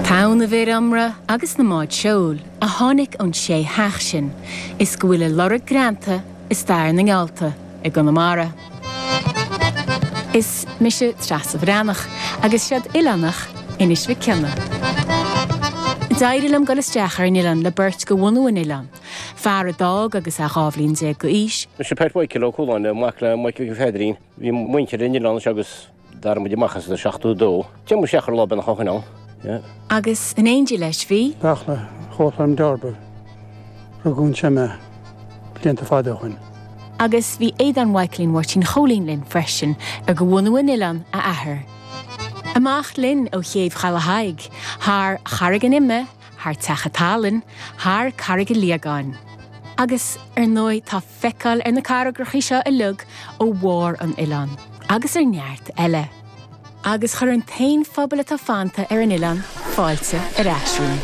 Tonn na bhfear iomramh agus na mbád seoil a tháinig ón sé theach sin is go bhfuil a lorg greanta i stair na ngeallta i gConamara. Is mise Treasa Bhreathnach agus seoid oileánach Inis Mhic Cionnaith. D'éirigh liom dul isteach ar an oileán le beirt de bhunadh an oileáin, fear a d'fhág agus é dhá bhliain déag d'aois, Mise Pat Mhichael Ó Cualáin, mac le Michael Pheadairín. Bhí muintir an oileáin anseo agus. D'fhág muid amach as an 72. D'imir muid seo ar lá beannach ó shoin ann. Agus in éindí leis bhí. Beartla Cholm d'fhorbair rugadh anseo mé blianta fada ó shoin. Agus bhí Aodán Mhaidhcilín Mháirtín Chóilín linn freisin ar de bhunadh an oileáin a athar. Amach linn ó Chéibh Chaladh Thaidhg, thar Charraig an Ime, thar Teach an tSalainn, thar Carraig a' Liagáin. Agus, ar ndóigh, tá. feiceáil ar na carraigreachaí seo uilig ó bharr an oileáin, agus ar neart eile. Agus chuir an t-aon phobal atá fanta ar an oileán fáilte ar ais romhainn.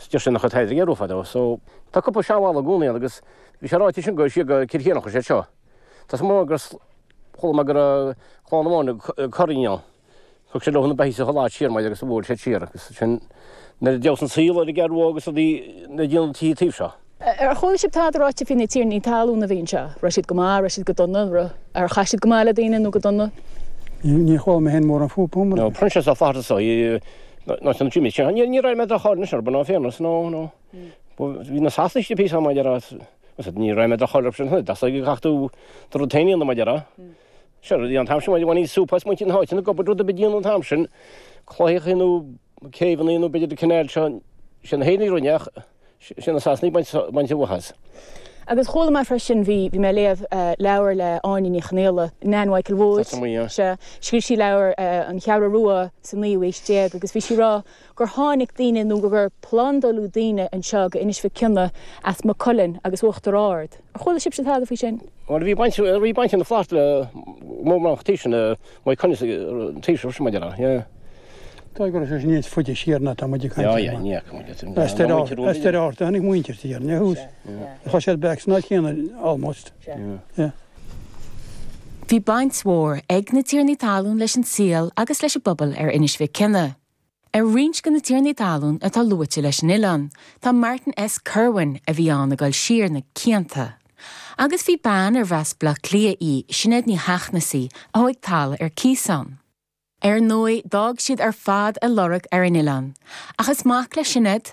Is deir sé nach raibh tairbhe ghéar uaidh fadó. So, tá cúpla seanbhalla i gcónaí ann agus bhí sé ráite sin go siar go Cill Chiaráin a chuaigh sé seo. Tá a fhios agam gur, chuala mé go raibh Clann na Móna ag cur oinigh ann. Thug siad leo na beithígh sa ghnáth siar maidin agus a bhuail siad siar agus sin nuair a d'fheabhas an saol ar an gcearrbhóg agus rudaí le déanamh do tithe taobh seo. Ar chuala sibh tada ráite faoi na tiarnaí talún a bhí anseo? Raibh siad go maith, raibh siad go dona, ar chaith siad go maith le daoine nó go dona? Níor chuala mé féin mórán fúthu. Nó Proinsias Ó Flaithearta seo i, nó an Jimmy sin. Ní raibh aon droch-cháil anois orthu, in fairness, nó, nó bhí na Sasanaigh istigh píosa, mar a déarfá, as ní raibh aon droch-cháil orthu sin, ach gur chaith tú do rud féin a dhéanamh, mar a déarfá. Sure, an t-am sin, bhain súp as muintir na háite, go rud ar bith a dhéanamh an t-am sin, claíochaí nó, céibheannaí, nó b'fhéidir an canal seo, sé na hÉireannaigh a rinne é ach sé na Sasanaigh ag baint an mhaith as. Agus chuala mé freisin, bhí mé ag léamh leabhar le Áine Ní Chonaola, Nan Mhichael Wood, sea, scríobh sí leabhar An Cheathrú Rua sa naoú aois déag agus bhí sí ag rá gur tháinig daoine nó gur plandáladh daoine anseo go Inis Mhic Cionnaith as Maigh Cuilinn agus Uachtar Ard. Ar chuala sibhse tada faoi sin? Bhuel, bhí baint ag na Flahertys le mór mórán cotaí sin. Mhaigh Cuilinn sa Taoiseach sin muid ar aghaidh, yeah. Tá ag rá sé sin níos faide siar ná tá muid ag caint ar. Yeah, yeah, ní fhaca muid sin. As Doire Fhatharta, as Doire Fhatharta, tháinig muintir tí ar, i dtús. Tá siad back san áit chéanna almost. Yeah. Bhí baint mhór ag na tiarnaí talún leis an saol agus leis an bpobal ar Inis Mhic Cionnaith. Ar roinnt de na tiarnaí talún atá luaite leis an oileán, tá Martin S. Kirwan, a bhí ann ag dul siar na cianta. Agus bhí bean arbh as Bleá Cliath í, Sinéad Ní hEachnasaigh, a thóig talamh ar cíos ann. Ar ndóigh, d'fhág siad ar fad a lorg ar an oileán. Ach is mac le Sinéad,